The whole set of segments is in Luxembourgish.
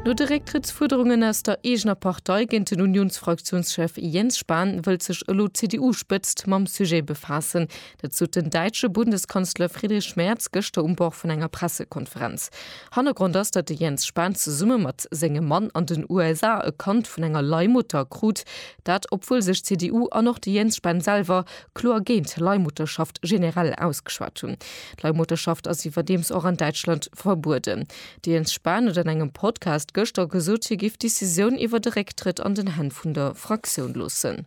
No de Récktrëttsfuerderungen aus der eegener Partei géint den Unionsfraktiounschef Jens Spahn wëllt sech elo d'CDU-Spëtzt mam Sujet befaassen. Dat sot den däitsche Bundeskanzler Friedrich Merz gëschter um Bord vun enger Pressekonferenz. Hannergrond ass, datt de Jens Spahn zesumme mat sengem Mann an den USA e Kand vun enger Leihmutter krut. Dat obwuel sech d'CDU an och de Jens Spahn selwer kloer géint d'Leihmutterschaft generell ausgeschwat hunn. D'Leihmutterschaft ass iwwerdeems och an Däitschland verbueden. De Jens Spahn huet an engem Podcast gëschter gesot, hie géif d'Decisioun iwwer de Récktrëtt an den Hänn vun der Fraktioun loossen.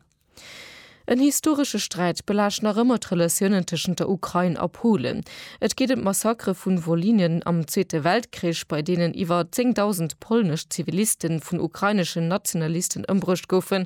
En historesche Sträit belaascht nach ëmmer d'Relatiounen tëschent der Ukrain a Polen. Et geet ëm d'Massakere vu Wolynie am Zweete Weltkrich, bei deenen iwwer 10.000 polnesch Ziviliste vun ukraineschen Nationalisten ëmbruecht goufen,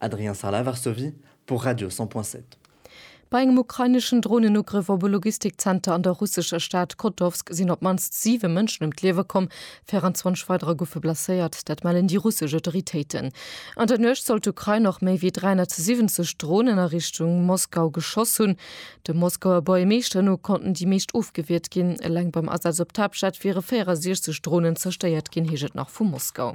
Adrien Sala, Varsovie, pour Radio 100.7. Bei engem ukraineschen Dronenugrëff op e Logistikzenter an der russescher Stad Kotovsk sinn op d'mannst siwe Mënschen ëm d'Liewe komm, 24 weiderer goufe blesséiert. Dat mellen déi russesch Autoritéiten. An der Nuecht soll d'Ukrain och méi wéi 370 Dronen a Richtung Moskau geschoss hunn. Dem Moskauer Buergermeeschter no konnten déi meescht ofgewiert ginn. Eleng beim Asaz op d'Haaptstad wiere 64 Dronen zerstéiert ginn, heescht et nach vu Moskau.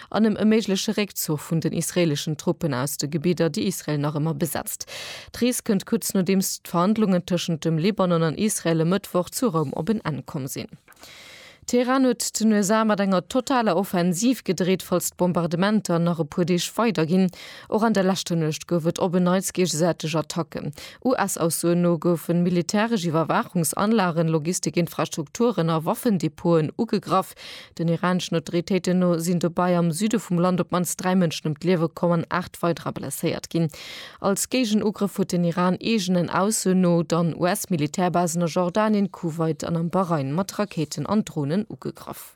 an em e méigleche Réckzuch vun den israeeleschen Truppen aus de Gebidder, déi Israel nach ëmmer besetzt. D'Rees kënnt kuerz nodeems d'Verhandlungen tëschent dem Libanon an Israel e Mëttwoch zu Roum op en Enn komm sinn. Teheran huet den USA mat enger totaler Offensiv gedreet, falls d'Bombardementer nach e puer Deeg weider ginn. Och an der leschter Nuecht gouf et op en Neits géigesäiteg Attacken. US-Aussoen no goufen militäresch Iwwerwaachungsanlagen, Logistik-Infrastrukturen a Waffendepoten ugegraff. Den iraneschen Autoritéiten no sinn dobei am Süde vum Land op d'mannst dräi Mënschen ëm d'Liewe komm an aacht weiderer blesséiert ginn. Als Géigenugrëff huet den Iran eegenen Aussoen no dann US-Militärbasen a Jordanien, Kuwait an am Bahrain mat Rakéiten an Dronen ugegraff.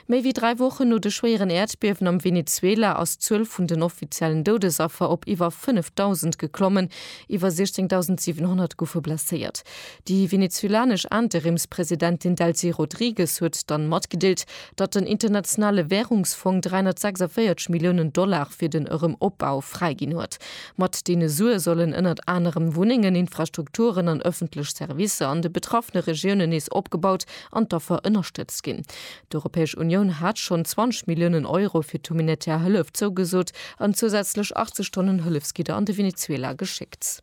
Méi wéi dräi Wochen no de schwéieren Äerdbiewen am Venezuela ass d'Zuel vun den offiziellen Doudesaffer op iwwer 5.000 geklommen, iwwer 16.700 goufe blesséiert. Déi venezuelanesch Interimspresidentin Delcy Rodrigues huet dann matgedeelt, datt den Internationale Währungsfong 346 Milliounen Dollar fir den Erëm Opbau fräiginn huet. Mat deene Sue sollen ënnert anerem Wunnengen, Infrastrukturen an ëffentlech Servicer an de betraffene Regiounen nees opgebaut an d'Affer ënnerstëtzt ginn. D'Europäesch Unioun hat schonn 20 Milliounen Euro fir d'humanitär Hëllef zougesot an zousätzlech 80 Tonnen Hëllefsgidder an de Venezuela geschéckt.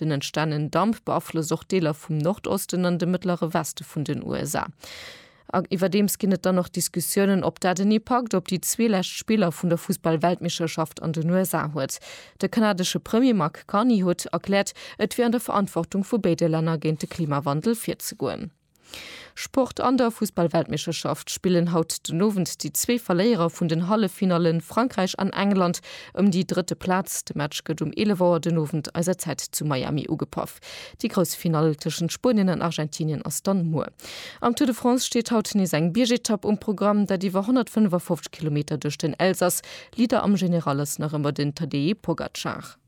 Den entstanen Damp beaflosst och Deeler vum Nordosten an de mëttlere Weste vun den USA. A iwwerdeems ginn et dann och Diskussiounen, ob dat en Ipakt op déi zwee lescht Spiller vun der Fussball-Weltmeeschterschaft an den USA huet. De kanadesche Premier Mark Carney huet erkläert, et wier an der Verantwortung vu béide Länner géint de Klimawandel virzegoen. Sport, An der Fussballweltmeeschterschaft spillen haut den Owend déi zwee Verléierer vun den Halleffinallen, Frankräich an England, ëm déi drëtte Plaz. De Match gëtt um 11 Auer den Owend eiser Zäit zu Miami ugepaff. Déi grouss Finall tëschent Spuenien an Argentinien ass dann muer. Am Tour de France steet haut nees eng Biergetapp um Programm, dat iwwer 155 Kilometer duerch den Elsass. Leader am General ass nach ëmmer den Tadej Pogacar.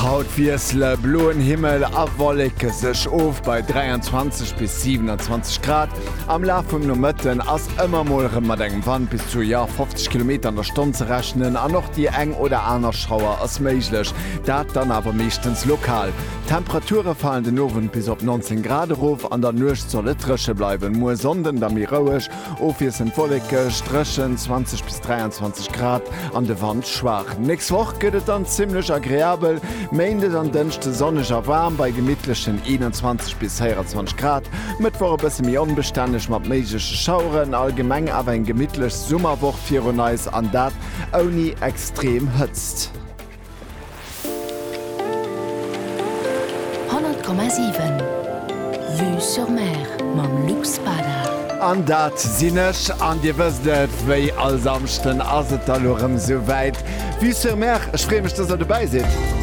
Haut wiessele bloen Himmel a Wolleke sech of bei 23 bis 27 Grad. Am Laf vum Nomëtten ass ëmmer mol erëm mat engem Wand bis zu, jo, 50 Kilometer an der Stonn ze rechnen an och déi eng oder aner Schauer ass méiglech, dat dann awer meeschtens lokal. D'Temperature falen den Owend bis op 19 Grad erof, an der Nuecht soll et dréche bleiwen. Muer Sonnden da méi roueg Ofwiesselnd wollekeg, dréchen, 20 bis 23 Grad, an de Wand schwaach. Nächst Woch gëtt et dann zimmlech agreabel, Méindes an Dënschde sonneg a waarm bei gemittlechen 21 bis 24 Grad, Mëttwoch e bësse méi onbestänneg mat méigleche Schaueren, allgemeng awer eng gemittlech Summerwoch virun eis, an dat ouni extrem Hëtzt. Honnert Komma siwen Vue sur Mer mam Luc Spada. An dat sinn ech. An Dir wësst et, wéi all Samschden ass et da lo rëm esou wäit, Vue sur Mer. Ech freeë mech, dass Der dobäi sidd.